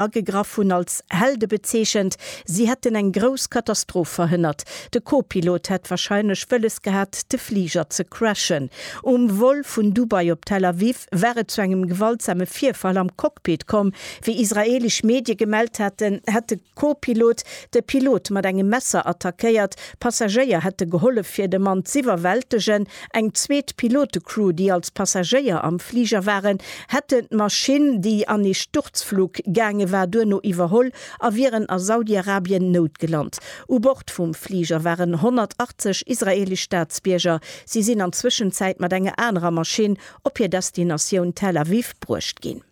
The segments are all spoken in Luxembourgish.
agegraff hunn, als Helde bezeechent. Si hätten eng grouss Katastroph verhënnert. De Co-Pilot hätt warscheinlech wëlles gehat, de Fliger ze crashen. Um Vol vun Dubai op Tel Aviv war et zu engem gewaltsame Virfall am Cockpit komm. Wéi israeelesch Medie gemellt haten, hätt de Co-Pilot de Pilot mat engem Messer attackéiert. Passagéier hätte gehollef, fir de Mann z'iwwerwältegen. Eng zweet Pilote-Crew, déi als Passagéier am Fliger waren, hätten d'Maschinn, déi an ee Sturzflug gaange war, duerno iwwerholl a wieren a Saudi-Arabien noutgelant. U Bord vum Fliger waren 180 israeelesch Staatsbierger. Si sinn an Zwëschenzäit mat enger anerer Maschinn op hir Destinatioun Tel Aviv bruecht ginn.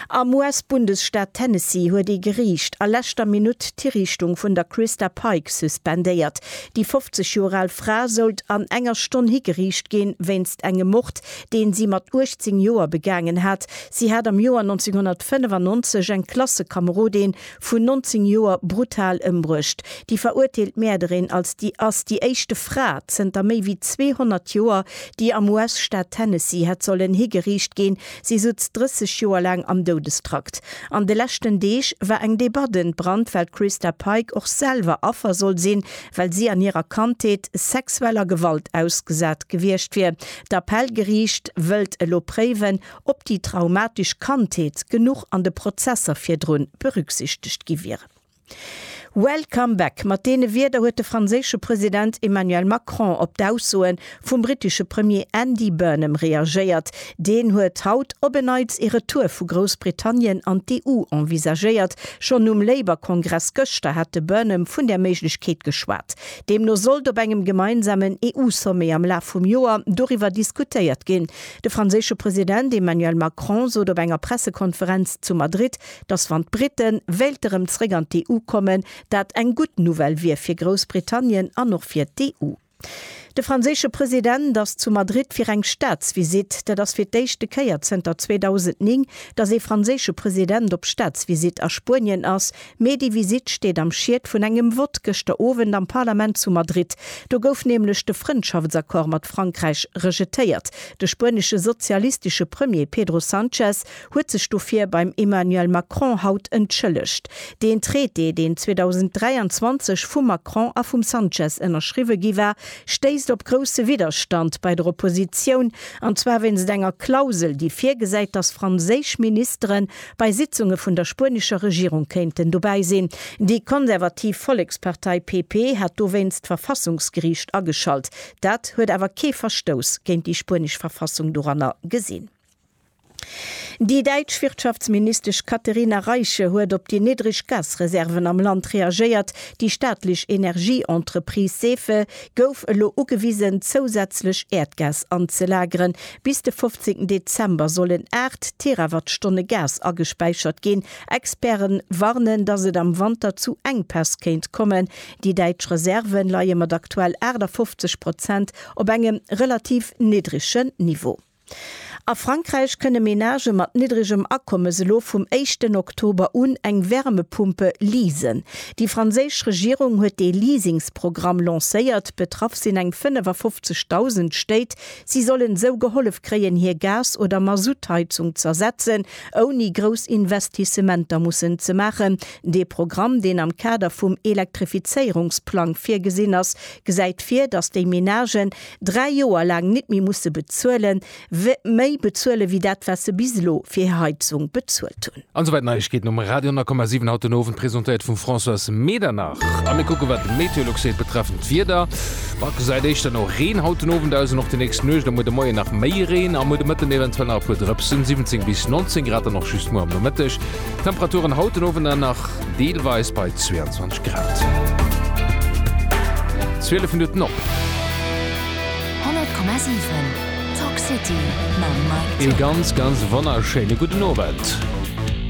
Am US-Bundesstaat Tennessee huet ee Geriicht a leschter Minutt d'Hiriichtung vun der Christa Pike suspendéiert. Déi 50 Joer al Fra sollt an enger Stonn higeriicht ginn, wéinst engem Mord, deen si mat 18 Joer begaangen hat. Si hat am Joer 1995 eng Klassekamerodin vun 19 Joer brutal ëmbruecht. Déi verurteelt Mäerderin als déi ass déi éischte Fra zënter méi wéi 200 Joer, déi am US-Staat Tennessee hätt sollen higeriicht ginn. Si sutz 30 Joer laang am Doudestrakt. An de leschten Deeg war eng Debatt entbrannt, well d'Christa Pike och selwer Affer soll sinn, well si an hirer Kandheet sexueller Gewalt ausgesat gewiescht wier. D'Appellgeriicht wëllt elo préiwen, ob déi traumatesch Kandheet genuch an de Prozesser virdrun berücksichtegt gi wieren. Welcome back, mat deene Wierder huet de franséische President Emmanuel Macron op d'Aussoe vum brittesche Premier Andy Burnham reagéiert. Deen huet haut op en Neits ee Retour vu Groussbritannien an d'EU envisagéiert. Schonn um Labour-Kongress gëschter hat de Burnham vun där Méiglechkeet geschwat. Deemno sollt op engem gemeinsamen EU-Sommet am Laf vum Joer doriwwer diskutéiert ginn. De franséische President Emmanuel Macron sot op enger Pressekonferenz zu Madrid, datt wann d'Brite wéilte erëm zeréck an d'EU kommen, dat eng gutt Nouvelle wier fir Groussbritannien an och fir d'EU. De franséische President ass zu Madrid fir eng Staatsvisitt. Dat ass fir d'éischte Kéier zënter 2009, datt ee franséische President op Staatsvisitt a Spuenien ass, Mee déi Visitt steet am Schied vun engem Vott gëschter Owend am Parlament zu Madrid. Do gouf nämlech de Frëndschaftsaccord mat Frankräich rejetéiert. De spuenesche sozialistesche Premier Pedro Sanchez huet sech dofir beim Emmanuel Macron haut entschëllegt. Deen Traité, deen 2023 vum Macron a vum Sanchez ënnerschriwwe gi war, stéisst op grousse Widderstand bei der Oppositioun, an zwar wéinst enger Klausel, déi virgesäit, datt franséisch Ministeren Bei Sitzunge vun der spuenescher Regierung kéinten dobäi sinn. Déi konservativ Vollekspartei PP hat dowéinst d'Verfassungsgeriicht ageschalt. Dat huet awer kee Verstouss géint déi spuenesch Verfassung doranner gesinn. Déi däitsch Wirtschaftsministesch Katherina Reiche huet op déi niddreg Gasreserven am Land reagéiert. Déi staatlech Energieentreprise Sefe gouf elo ugewisen, zousätzlech Äerdgas anzelageren. Bis de 15 Dezember sollen 8 Terawattstonne Gas agespäichert ginn. Experte warnen, datt et am Wanter zu Enkpäss kéint kommen. Déi däitsch Reserve leie mat aktuell 58 Prozent op engem relativ niddrege Niveau. A Frankräich kënne Menagë mat niddregem Akommes elo vum éischten Oktober un eng Wärmepumpe leasen. Déi franséisch Regierung huet dee Leasingsprogramm lancéiert. Betraff sinn eng 55.000 Stéit, Si sollen esou gehollef kréien hir Gas oder Masutt-Heizung z'ersetzen, ouni grouss Investissementer mussen ze maachen. Dee Programm, deen am Kader vum Elektrifizéierungsplang virgesinn ass, gesäit vir, datt déi Menagen dräi Joer laang net méi musse bezuelen, méi bezuelen, wéi dat wat se bis elo fir hir Heizung bezuelt hunn. An souwäit Neiegkeeten um Radio 10,7 haut den Owend, presentéiert vum Françoise Medernach. A mir kucke wat de Meteolux seet betreffend d'Wieder. Bah, et gesäit éischter no Reen haut den Owend aus an och déi nächst Nuecht. Am muer de Moien nach méi Reen, a muer de Mëtten eventuell nach e puer Drëpsen. 17 bis 19 Grad dann och just muer am Nomëtteg. Temperaturen haut den Owend dann nach deelweis bei 22 Grad. 12 Minutten op. 100,7. Talk City mam Mike Thill. Ee ganz, ganz wonnerschéine gudden Owend.